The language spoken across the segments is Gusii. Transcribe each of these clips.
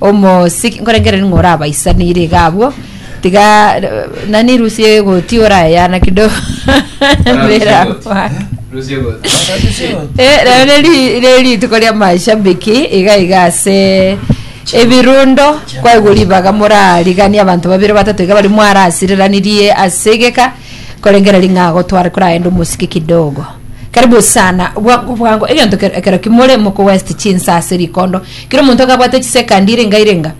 Omosike, nkorengereria ng'a orabaisanire iga abwo, tiga eh, nani rusia egoti orayana kidogo mbere akwake. Rusia goti. Eh, rero ne ri- ne rituko ria mashabiki iga iga ase ebirundo kwaigwa ribaga morariganie abanto babere batato iga bari mwarasireranirie ase egeka korengereria ng'a agotware koragenda omosike kidogo karibu sana bwango bwango egento kero ekero kimore moko west chinsa ase rikondo Kera omonto akabwate chisekandi irenga irenga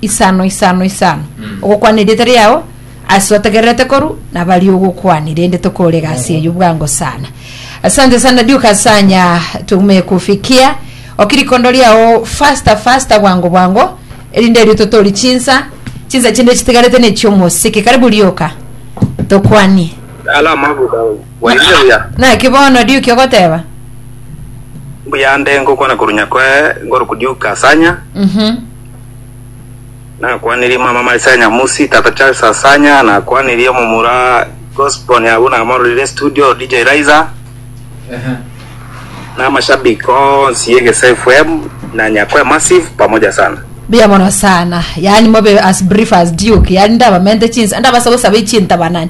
isano isano isano ogokwana erieta riao ase otegererete koru nabari ogokwania rende tokore egasi eyo bwango sana asante sana duka sanya tumekufikia okirikondo riao fasta fasta bwango bwango erinde erio totori chinsa chinsa chinde chitigarete nechio omosike karibu rioka tokwanie Salama buda. Bwairire buya. Naki bono riuki ogoteba? Mbuya nde ngokwana korwa nyakwae ngoroku Duke Asanya, Mhm. nakwanirie mama Marisa Nyamusi, tata Charles Asanya, nakwanirie omomura Gosbon abwo namororire studio DJ Raiza, na amashabiki onsi y'Egese FM na Nyakwae Massive pamoja sana. Mbuya mono sana. Yaani mobe as brief as Duke. Yaani ndabamente chinsa, ndabasa gosaba echintabanani.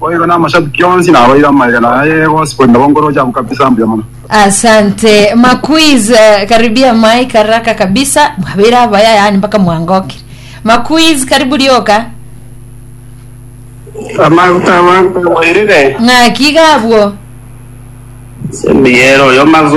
Boigo na amashabiki onsi nabaire amaiga na ay'egoa sibori nabo ngoro chabu kabisa mbuya mono. Asante Makuiz, eh, karibia Mike haraka kabisa mwabeire abaya yani mpaka mwangokire Makuiz karibu rioka Amaguta abanto bairire. ng'aki iga abwo Semiyero oyo mazo